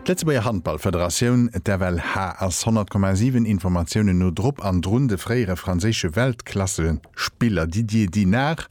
D'Lëtzebuerger Handballfederatioun, d'FLH, ass 100,7 Informatiounen no drop an drun, de fréiere franséische Weltklassespiller Didier Dinard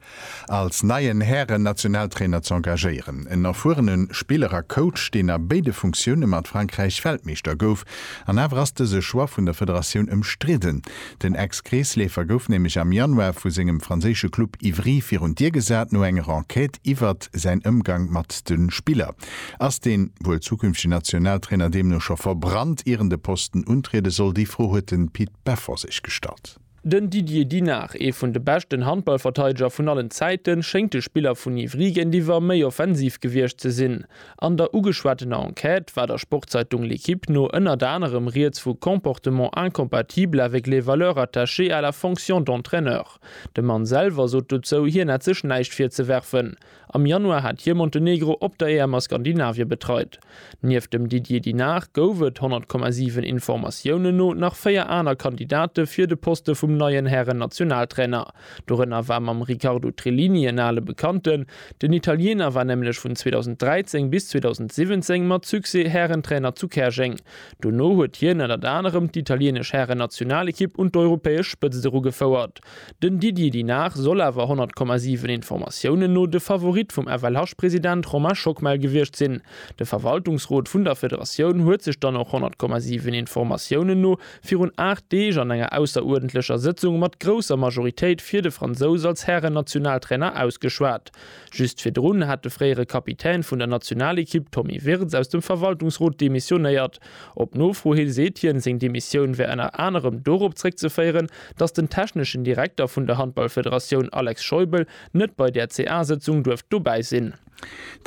als neien Hären-Nationaltrainer ze engagéieren. En erfuerene Spiller a Coach, deen a béide Funktioune mat Frankräich Weltmeeschter gouf. An awer ass dëse Choix vun der Federatioun ëmstridden. Den Ex-Kreesleefer gouf nämlech am Januar vu sengem franséische Club Ivry virun d'Dier gesat no enger Enquête iwwert säin Ëmgang mat de Spiller. Ass dee wuel zukünftegen Nationaltrainer deemno scho verbrannt, ier en de Posten untriede soll? Déi Fro huet de Pit Beffer sech gestallt. Den Didier Dinard, ee vun de beschten Handballverteideger vun allen Zäiten, schéngt de Spiller vun Ivry géintiwwer méi offensiv gewiescht ze sinn. An der ugeschwattener Enquête war der Sportzeitung L'Équipe no ënnert anerem rieds vu Comportements incompatibles avec les valeurs attachées à la fonction d'entraîneur. De Mann selwer sot dozou, hien hätt sech näischt virzewerfen. Am Januar hat hie Montenegro op der EM a Skandinavie betreit. Nieft dem Didier Dinard gouf et, 100,7 Informatiounen no, nach véier aner Kandidate fir de Poste vum neien Hären-Nationaltrainer. Dorënner war mam Riccardo Trellini en ale Bekannten. Den Italiener war nämlech vun 2013 bis 2017 mat Succès Härentrainer zu Käerjeng. Dono huet hien ënnert anerem d'italienesch Härennationalekipp un d'europäesch Spëtzt erugefouert. Den Didier Dinard soll awer 100,7 Informatiounen no de Favorit vum FLH-President Romain Schockmel gewiescht sinn. De Verwaltungsrot vun der Federatioun huet sech dann och 100,7 Informatiounen no virun 8 Deeg an enger ausseruerdentlecher Sëtzung mat grousser Majoritéit fir de Fransous als Hären-Nationaltrainer ausgeschwat. Just virdrun hat de fréiere Kapitän vun der Nationalekipp Tommy Wirtz aus dem Verwaltungsrot demissionéiert. Op Nofro hi seet hien, seng Demissioun wär ënner anerem dorop zréckzeféieren, datt den techneschen Direkter vun der Handballfederatioun Alex Scheubel net bei där CA-Sëtzung duerft dobäi sinn.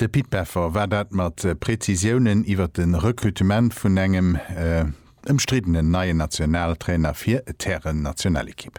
De Pit Beffer war dat mat Prezisiounen iwwer de Rekrutement vun engem. Ëmstriddenen neien Nationaltrainer fir d'Hären-Nationalekipp.